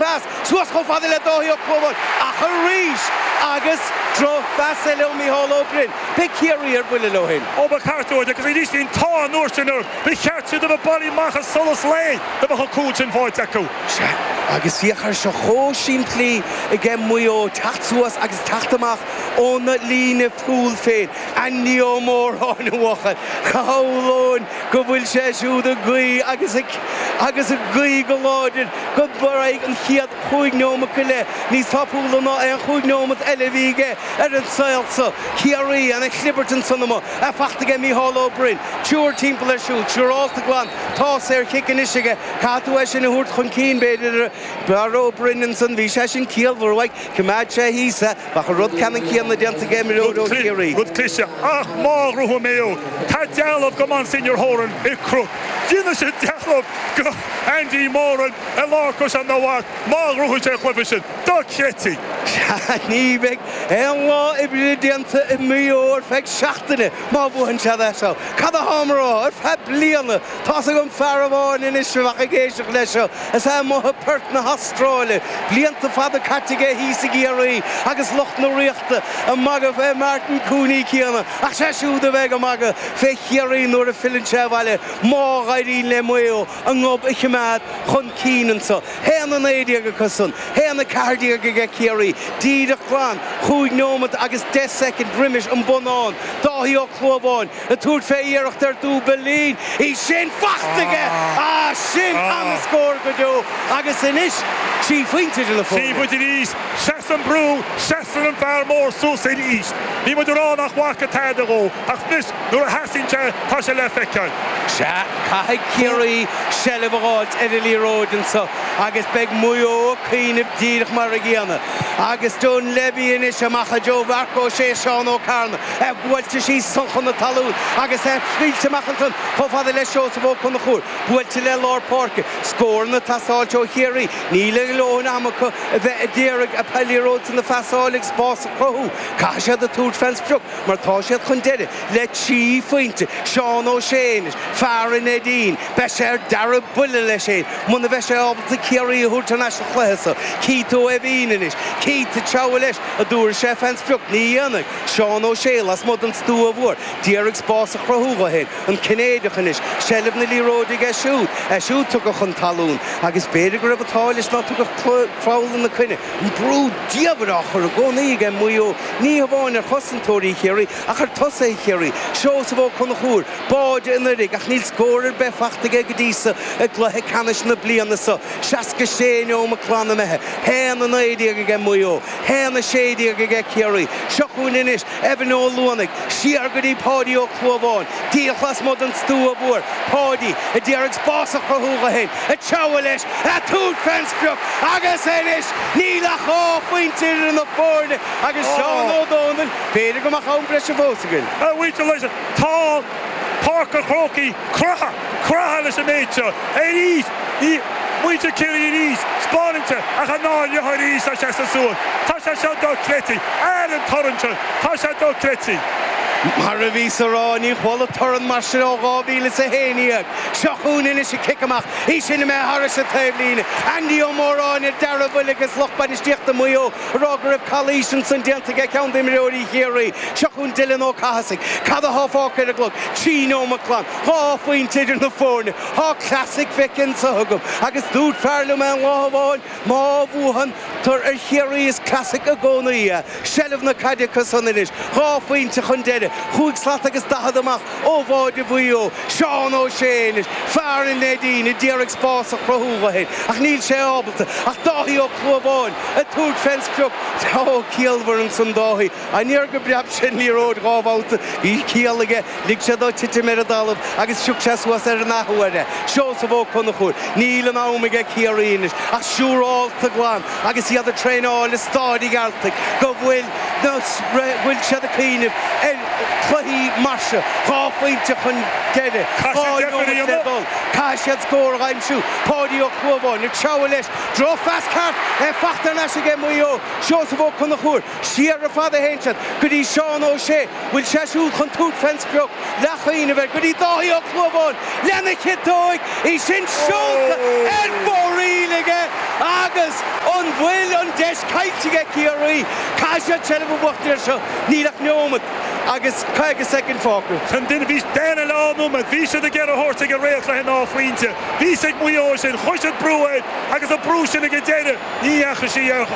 Pas suas chomh fada le Dáithí Ó Clúmháin ach arís agus droch phas eile ó Micheál Ó Broin. Beidh Ciarraí ar buile leo fhéin. Ó ba cheart dóibh, agus arís bhí an t-ádh an uair sin orthu, ba cheart dóibh a bheith bailí amach as solas lae da mbeadh an cúl sin fáighte acu. Sea, agus féach air seo chomh simplí aige Maigh Eo teacht suas agus teacht amach óna líne chúil féin. Andy Ó Móráin a bhuachan. Shamhlóinn go bhfuil sé siúd ag guí agus ag agus ag guí go láidir go mbogfaidh an chéad chúig neomat go leith níos tapúla ná aon chúig neomat eile a bhí aige ar an saol so. Ciarraí ana-chlibirt ansan amuigh í fachta aige Micheál Ó Broin. Triúr timpeall air siúd. Siúrálta glan. Tá saorchic anois aige. Caithfidh tú é sin a thabhairt chun cinn b'fhéidir ar Ó Broin ansan. Bhí sé sin ciallmhar uaidh. Choimeád sé thíos é. Bheadh an rud ceannann céanna déanta ag imreoir ó Chiarraí. Rud cliste ach má ghnóthaíonn Maigh Eo. Tá dealbh go Monsignor Horan i gCnoc, déanfaidh siad dealbh go Andy Moran i lár Chaisleán an Bharraigh má ghnóthaíonn sé an cluiche sin. Dochreidte! Ní bheidh aon lá oibre déanta i Maigh Eo ar feadh seachtaine má bhuann siad é seo. Cad atáim a rá? Ar feadh bliana! Tá's agam fear amháin anois a bheidh ag éisteacht leis seo, is é amuigh i bPerth na hAstráile. Blianta fada caite aige thíos i gCiarraí agus lucht na Ríochta a' magadh fé Martin 'Cooney' céanna ach 'sé siúd a bheidh a' magadh fé Chiarraí nuair a philleann sé abhaile má dh'éiríonn le Maigh Eo a ngob a chimeád chun cinn anso. Haon a naoi déag acu san, haon a ceathair déag aige Ciarraí, díreach glan, chúig neomat agus deich soicind roimis an bonnán, Dáithí Ó Clúmháin. ag tabhairt fé iarracht ar dúbailín. Í sin fachta aige! Ah, sin ana-scór go deo agus anois trí phointe idir na foirne. Seafóid arís! Seasann brú, seasann an fear mór suas arís. Bhí muid ag rá nach bhfaca tada dhó, ach anois nuair a theastaíonn sé tá sé le feiceáil. Sea, caithfidh Ciarraí seilbh a dh'fháilt ar an liathróid anso agus beidh Maigh Eo ag cuimhneamh díreach mar an gcéanna. Agus Dunlevy anois, amach i dtreo Mharc Ó Sé, Seán Ó Cearnaigh. é buailte síos ansan chun na talún agus é scaoilte amach ansan chomh fada le Seosamh Ó Conchúir. Buailte le lár páirce. Scóranna ag teastáil ó Chiarraí. Níl a ndhóthain ama acu a bheith a d'iarraidh an liathróid san a phasáil agus spás a chruthú. Caithfidh siad a tabhairt fén sprioc mar tá siad chun deireadh le trí phointe. Seán Ó Sé anois, fear an Neidín, beidh sé ar dearg buile leis fhéin muna bheidh sé ábalta Ciarraí a thabhairt thar n-ais sa chluiche so. Keith Ó Eibhín anois. Keith ag treabhadh leis, a dtabharfaidh sé fén sprioc? Ní dhéanfaidh. Seán Ó Sé lasmuigh den stua mhór, d'iarraidh spás a chruthú dho féin, an Cinnéideach anois, seilbh na liathróide aige siúd, é siúd tugtha chun talún, agus b'fhéidir go raibh an t-ádh leis ná tugadh clú lena coinne. An brú diamhair á chur i gcónaí aige Maigh Eo, ní hamháin ar chosantóirí Chiarraí, ach ar thosaithe Chiarraí. Seosamh Ó Conchúir, báide an Oirthir, ach níl scór ar bith faighte aige go dtí so i gcluiche ceannais na bliana so. Seasca sé neomat glan imithe, haon a naoi déag aige Maigh Eo. 1:16 aige Ciarraí. Seo chugainn anois Evan Ó Luanaigh, siar go dtí Paudie Ó Clúmháin. Díreach lasmuigh den stua mhór Paudie a d'iarraidh spás a chruthú dho fhéin. Ag treabhadh leis, ag tabhairt fén sprioc agus anois níl ach dhá phointe idir na foirne agus Seán Ó Domhnaill, b'fhéidir go mbeadh am breise fós againn. Tá Páirc an Chrócaigh, croitheadh, croitheadh leis an méid seo arís, ní, muintir Chiarraí arís, spáraíte ach a ndá ndlitheadh arís tá sé sa suan, tá sé seo dochreidte, aire an torann seo, tá sé dochreidte. Mar a bhíos a rá, ní chuala torann mar sin ó dhá mhíle is a haon déag, seo chugainn anois an cic amach, í sin imithe thairis an taobhlíne, Andy Ó Móráin ar deargbhuile agus lucht bainistíochta Mhaigh Eo, rá go raibh calaois ansin déanta aige ceann d'imreoirí Chiarraí. Seo chughainn Dylan Ó Cathasaigh. Cad atá fágtha ar an gclog? Trí neomat glan. Dhá phointe idir na foirne. Tá classic feicthe anso againn agus dúirt fear liom aon lá amháin má bhuann tú ar Chiarraí is classic i gcónaí é. Seilbh na caide acusan anois. Dhá phointe chun deiridh. Cúig slat agus daichead amach. ó bháide Mhaigh Eo, Seán Ó Sé anois, fear an Neidín a d'iarraidh spás a chruthú dho fhéin ach níl sé ábalta ach Dáithí Ó Clúmháin ag tabhairt fén sprioc. Ó ciallmhar ansan Dáithí, aniar go bpreab sé an liathróid dhá bhabhta, bhí ciall aige, lig sé dó titim ar an dtalamh agus phioc sé suas ar an athuair é. Seosamh Ó Conchúir, níl an am aige Ciarraí anois ach siúrálta glan agus iad ag traenáil i Staid an Ghearaltaigh go bhfuil, nó bhfuil siad ag cuimhneamh ar chluichí mar seo, dhá phointe chun deiridh, dhá nóimeat le dul, caithfidh siad scór a aimsiú. Páidí Ó Clúmháin ag treabhadh leis, drochphas ceart í fachta ar ais ag Maigh Eo, Seosamh Ó Conchúir, siar ar fad a théann siad go dtí Seán Ó Sé, Bhfuil sé siúd chun tabhairt fén sprioc leath choinnibh ar go dtí Dáithí Ó Clúmháin lena chiotóig, í sin seolta ar fóraoil aige agus an bhfuil an deis caillte aige Ciarraí? Caithfidh siad seilbh a bhuachtaint ar seo, níl ach neomat agus caoga soicind fágtha. An duine bhí deireadh leath an iomaid, bhí siad ag iarraidh é a thabhairt ag an réalt leis an dá phointe. Bhí 's ag Maigh Eo sin, chuir siad brú air agus an brú sin ag an deireadh ní dheachaigh sí ar.